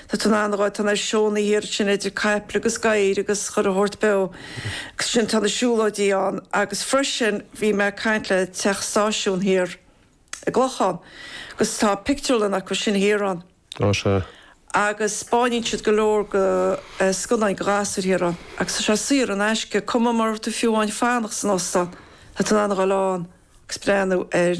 Tá tú in ann a ghabháil ag na seónna thiar sin idir caiple agus gadhair agus chuile shórt beo agus ansin tá na siúlóidí ann agus freisin bhí mé ag caint le Teach an Stáisiúin thiar i gClochán agus tá pictiúrlann acu sin thiar ann Ó sea. agus spáineann siad go leor de scannáin do ghasúir thiar ann agus tá sé saor in aisce cuma mara bhfuil tú fiú amháin ag fanacht san óstán tá tú in ann a ghabháil ann agus breathnú air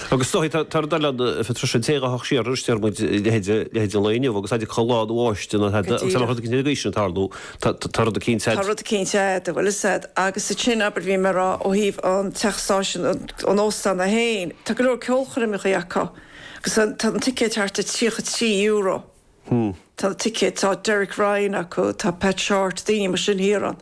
Agus do thosaigh, tá rud eile ann, freisin, tá tú ag teacht siar, aríst, deir muid, leithéid an lae inniu, agus adeir cad lá báistí ann, agus tá rud eicínt ag aois sin ag tarlú, tá rud eicínt a'd. Tá rud eicínt a'd, a bhfuil 'fhios a'd, agus ansin, abair, bhí mé ag rá, ó thaobh an teach stáisiúin, an óstán sin, tá go leor ceolchoirmeacha acu, agus tá tá an ticéad thart ar €33, tá na ticéid, tá Derek Ryan acu, tá Pat Shortt, daoine mar sin thiar ann.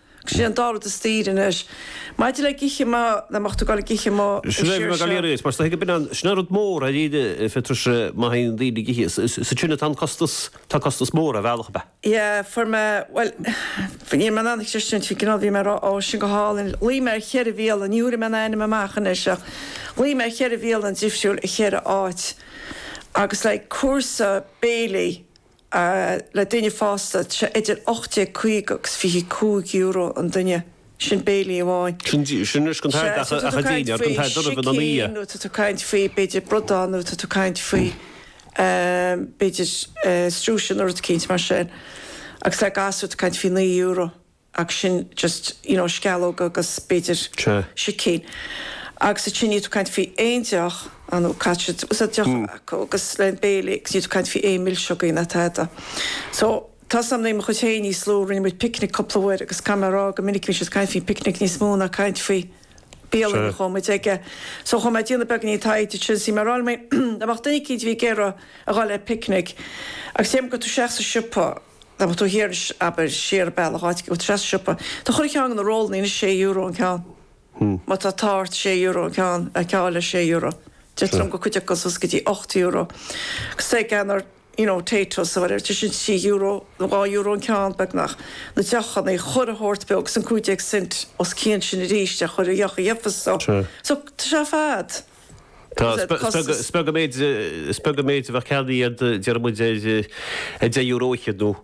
Sin an dá rud is daoire anois. Maidir le ag ithe amuigh, le má tá tú ag gabháil ag ithe amuigh, a Sheoirse. Sin an rud mór ar íde Phetrois má théann daoine ag ithe. Is as sin atá an costas, tá costas mór ar bhealach ar bith. Yeah, fuair mé, bhuel, níl mé in ann ag tuiscint an cineál, bhí mé ag rá, oh, sin go hálainn, ghlaoigh mé ar cheithre bhialann, ní thabharfaidh mé an ainm amach anois ach ghlaoigh mé ar cheithre bhialann difriúil i cheithre áit agus like cúrsa béilí, le duine fásta, tá sé idir €18.50 agus €25 an duine, sin béilí amháin. Sin sin riosca an tairbh ach ach a deineadh ag an tairbh doraibh ina dhiaidh. nó tá tú ag caint faoi b'fhéidir bradán nó tá tú ag caint faoi b'fhéidir struisín nó rud eicínt mar sin agus le gasúir tá tú ag caint faoi naoi euro. ach sin just, you know, sceallóg agus b'fhéidir Sea. sicín. Agus ansin níl tú ag caint faoi aon deoch, ah nó caithfidh tú, sea, deoch Mm. acu agus le béilí agus níl tú ag caint faoi aon milseogaí ná tada. So, tá 'fhios a'm nuair a bhí mo chuid féin níos lú, rinne muid picnic cúpla uair agus caithfidh mé a rá go minic a bhíonn siad ag caint faoin picnic níos mó ná caint faoi bialann a Sea. chuaigh muid aige. So, chuaigh mé ag déanamh beagáinín taighde ansin is bhí mé ag fáil amach duine eicínt a bhí ag iarraidh a dhul ar picnic agus dheim gur tú isteach sa siopa, Abair tú thiar anois, abair siar an bealach, ag dul isteach sa siopa. Tá chuile cheann de na rólanna anois sé euro an ceann. Má tá thart ar sé euro an ceann, geall le sé euro. Deirtear liom go bhfuil cuid acu suas go dtí ocht euro. Steak and or you know Taytos or whatever, sin trí euro nó dhá euro an ceann beagnach. Na deochanna, chuile shórt beo agus an cúig déag cent os cionn sin arís ar chuile dheoch a gheobhfas tú. So tá sé ar fad. Tá is beag an méid is beag an méid a bheadh ceannaithe a'd, deireadh muid, ar €10 a cheadú.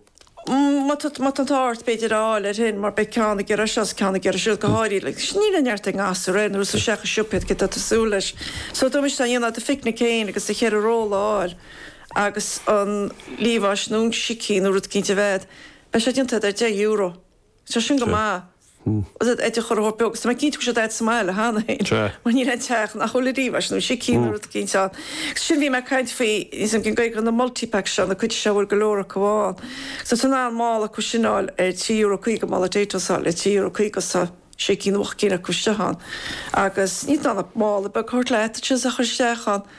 Má tá má tá an t-ádh ort b'fhéidir a fháil air sin mar beidh ceann ag iarraidh seo agus ceann ag iarraidh siúd go háirithe le sin níl aon neart ag an ngasúr ar aon nós isteach sa siopa cé tá tú súil leis. So dá miste dhéanfadh do phicnic féin agus do cheithre ról a fháil agus an liamhás nó an sicín nó rud eicínt a bheith agat, beidh sé déanta agat ar €10. Tá sin go maith. Ait a chur a hórpeo agus tá mé cinnte go bhfuil siad agat sa mbaile cheana féin. Sea. Mar níl aon teach nach bhfuil liamhás nó sicín nó rud éicint ann. Agus sin bhí mé ag caint faoi, níl fhios agam cén Ghaeilge na multi-packs seo, na cinn seo a bhfuil go leor acu ann. Agus tá tú in ann mála acu sin a fháil ar €3.50 mála Taytos a fháil le €3.50 agus tá sé cinn nó ocht gcinn acu istigh ann. Agus níl tú in ann mála beag a thabhairt leat agus sin is a chur isteach ann.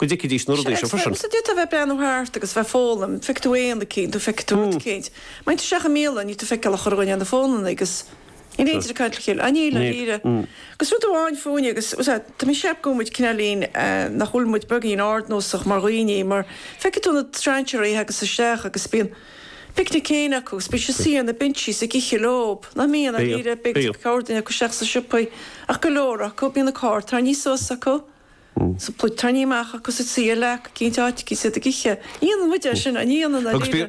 go dtuigfidís na rudaí sin freisin. Sea, d'fhéadfadh bheith ag breathnú thart agus bheith ag foghlaim, feicfidh tú éan eicínt nó feicfidh tú rud eicínt. Má théann tú isteach i mbialann, níl tú ag feiceáil ach daoine ar na fónanna agus níl éinne ag caint le chéile. Á níl, dáiríre. Agus rud amháin fúinne agus, sea, tá mé ag ceapadh go bhfuil muid cineáilín, nach bhfuil muid beagáinín ardnósach mar dhaoine mar feicfidh tú na strainséaraí ag teacht isteach agus bíonn picnicín acu agus bíonn siad suite ar na binsí ag ithe leob, nach mbíonn, á díreach, beidh corrdhuine acu isteach sna siopaí ach go leor acu, bíonn na carr tarraingthe suas acu. Sampla, tarraingthe amach acu sa tsaoghal ac gé áit a bhí siad ag ithe. Ní dhéanann muide é sin, ní dhéanann na daoine.